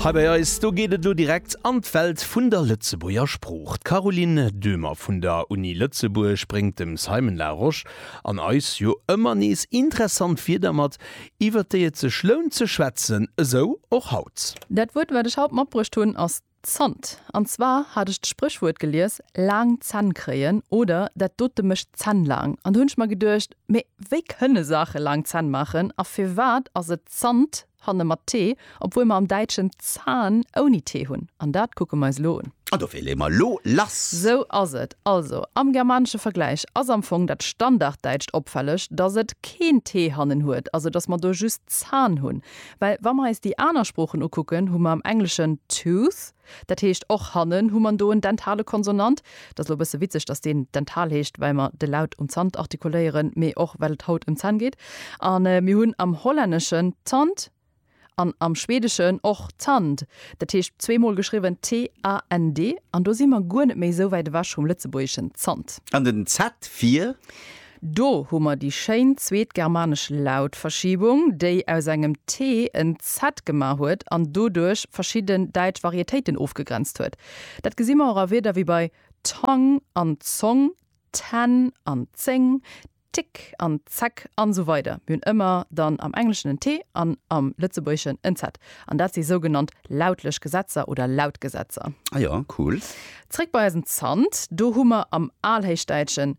Hei bei eis, do geet et elo direkt an d'Welt vun der Lëtzebuerger Sprooch. D'Caroline Döhmer vun der Uni Lëtzebuerg bréngt dem Simon Larosche an eis jo ëmmer nees interessant Wierder mat, iwwert déi et sech lount ze schwätzen, esou och haut. Dat Wuert, wat ech haut matbruecht hunn, ass Zant. An zwar hat ech d'Spréchwuert gelies, laang Zänn kréien oder dat dote mécht d'Zänn laang. An do hunn ech mer geduecht, mee wéi kënne Saache laang Zänn maachen a firwat ass et Zant hanne mat t, obwuel mer am Däitschen Zahn ouni t hunn? An dat kucke mer eis elo un. An dofir leeë mer elo lass. Sou ass et. Also, am germanesche Vergläich ass am Fong dat Standarddäitscht opfälleg, dass et keen t hannen huet, also dass mer do just Zahn hunn. Well wa mer eis déi aner Sproochen ukucken, hu mer am Engleschen tooth, dat heescht och hannen hu mer do en dentale Konsonant. Et ass elo e bësse witzeg, datt deen dental heescht, well mer de Laut um Zant artikuléieren, mee och well et haut ëm d'Zänn geet. A mir hunn am Hollänneschen tand an am Schweedeschen och tand, dat heescht zwee Mol geschriwwen t-a-n-d. An do si mer guer net méi esou wäit ewech vum Lëtzebuergeschen Zant. An den z fir? Do hu mer déi schéin zweet germanesch Lautverschiebung, déi aus engem t en z gemaach huet an doduerch verschidden däitsch Varietéiten ofgegrenzt huet. Dat gesi mer och a Wierder wéi bei Tong an Zong, ten an zéng, tick an zeck an esou weider Mir hunn ëmmer dann am Engleschen en t an am Lëtzebuergeschen en z. An dat si sougenannt lautlech Gesetzer oder Lautgesetzer. Ah jo, cool. Zréck bei eisen Zant. Do hu mer am Alhéichdäitschen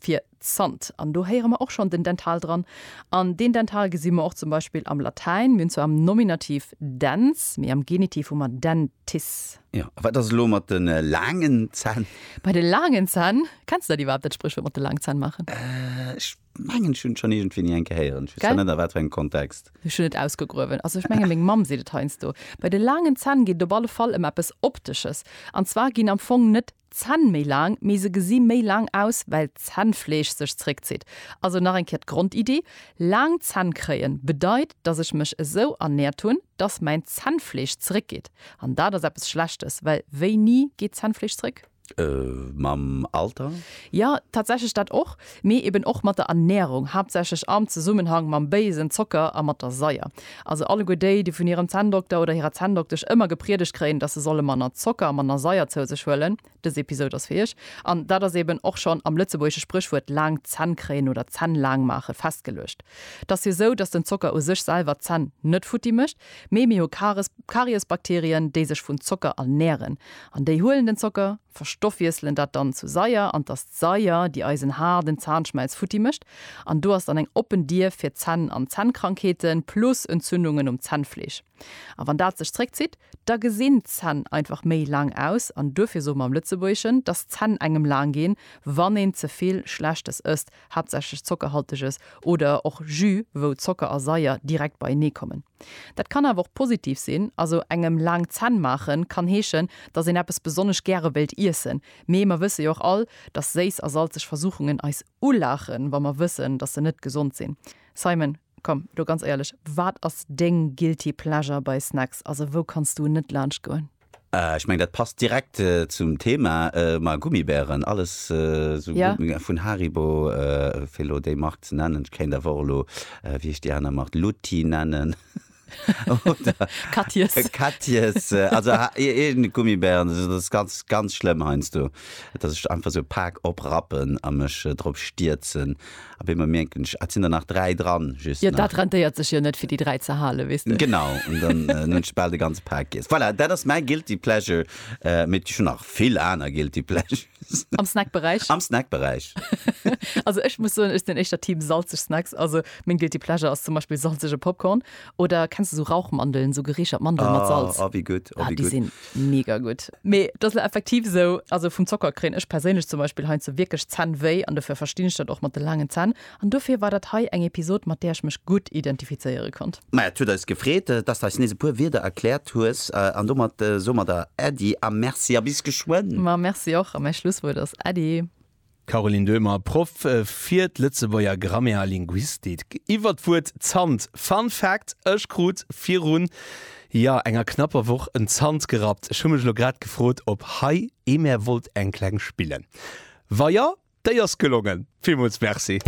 fir Zant. An do héiere mer och schonn den Dental dran. An deen Dental gesi mer och zum Beispill am Latäin. Mir hunn zwar am Nominativ dens, mee am Genitiv hu mer dentis. Jo, a wat ass elo mat de laangen Zänn? Bei de laangen Zänn, kenns de dat iwwerhaapt, dat Spréchwuert mat de laangen Zänn maachen? Ech mengen, ech hunn et schonn iergendwéi ni eng Kéier héieren. Ech weess zwar net, a wat fir engem Kontext. Ech hunn et ausgegruewen. Also ech menge meng Mamm seet et heiansdo. Bei de laangen Zänn geet et op alle Fall ëm eppes Optesches. An zwar ginn am Fong net Zänn méi laang, mee se gesi méi laang aus, well d'Zännfleesch sech zréckzitt. Also nach eng Kéier d'Grondiddi, Laang Zänn kréien bedeit, dass ech mech esou ernäert hunn, dass mäin Zännfleesch zréckgeet. An dat ass eppes Schlechtes, well wéini geet d'Zännfleesch zréck? Mam Alter? Jo, tatsächlech dat och. Mee eben och mat der Ernährung, haaptsächlech am Zesummenhang mam béisen Zocker a mat der Saier. Also alleguer déi, déi vun hirem Zänndokter oder hirer Zänndoktesch ëmmer gepriedegt kréien, dass se solle manner Zocker a manner Saier zou sech huelen, dës Episod ass fir iech. An dat ass eben och schonn am lëtzebuergesche Spréchwuert laang Zänn kréien oder Zänn laang maache festgeluecht. T'ass jo sou, dass den Zocker u sech selwer d'Zänn net futti mécht, mee mir hu Karies, Kariesbakterien, déi sech vun Zocker ernähren. An déi huelen den Zocker, verstoffwiesselen dat dann zu Saier an t'ass. D'Saier, déi eisen haarden Zahnschmelz futti mécht, an do ass dann eng oppen Dier fir d'Zänn an Zännkrankheeten plus Entzündungen um Zännfleesch. A wann dat sech zréckzitt, da gesinn d'Zänn einfach méi laang aus an duerfir soe mer am Lëtzebuergeschen, dass d'Zänn engem laang ginn, wann een ze vill Schlechtes ësst, haaptsächlech Zockerhalteges oder och Jus, wou Zocker a Saier direkt beienee kommen. Dat kann awer och positiv sinn, also engem laang Zänn maachen kann heeschen, dass een eppes besonnesch gäre wéilt iessen, Mee mer wësse jo och all, dass séiss a salzeg Versuchungen eis ulaachen, wa mer wëssen, dass se net gesond sinn. Simon, komm elo ganz éierlech, wat ass deng guilty pleasure bei Snacks? Also, wou kanns du net laanscht goen? Ech mengen, dat passt direkt zum Thema, ma Gummibären, alles esou Ja. Gummibären vun Haribo, fir elo déi Mark ze nennen. Ech kéint awer och elo, wéi heescht déi aner Mark, Lutti nennen. Oder Katjes. Katjes, also irgende Gummibären, also das ist ganz, ganz schlimm heiansdo, dass ech einfach esou pak oprappen a mech drop stierzen. Op eemol mierken ech, ah, et sinn der nach dräi dran, just nach. Jo, dat rentéiert sech jo net, fir déi dräi ze halen, weess de. Genau, an dann hunn ech bal de ganze Pak giess. Voilà, dat ass mäi guilty pleasure, mee et gi scho nach vill aner guilty pleasures. Am Snackberäich? Am Snackberäich. also ech muss soen, ech sinn éischter Team salzeg Snacks. Also meng guilty pleasure ass zum Beispill salzege Popcorn oder kenns du so Rauchmandeln, so gereechert Mandeln ah, mat Salz? Ah, wie gutt, ah, ah, wie gutt. sinn mega gutt. Mee dat ass effektiv sou, also vum Zocker kréien ech perséinlech zum Beispill heinze wierklech Zänn wéi an dofir verstinn ech dat och mat de laangen Zänn. An dofir war dat hei eng Episod mat där ech mech gutt identifizéiere konnt. Maja, et huet eis gefreet, dass de eis nees e puer Wierder erkläert hues. An domat soe mer der Äddi a Merci a bis geschwënn! Ma Merci och a mäi Schlusswuert ass Äddi! Caroline Döhmer, Proff fir d'Lëtzebuerger Grammaire a Linguistik, iwwer d'Wuert Zant. Fun Fact, Ech krut virun Jo, enger knapper Woch en Zant gerappt. Ech hu mech elo grad gefrot op hei ee mär wollt eng kleng spillen. Wa jo, déi ass gelongen. Villmools Merci.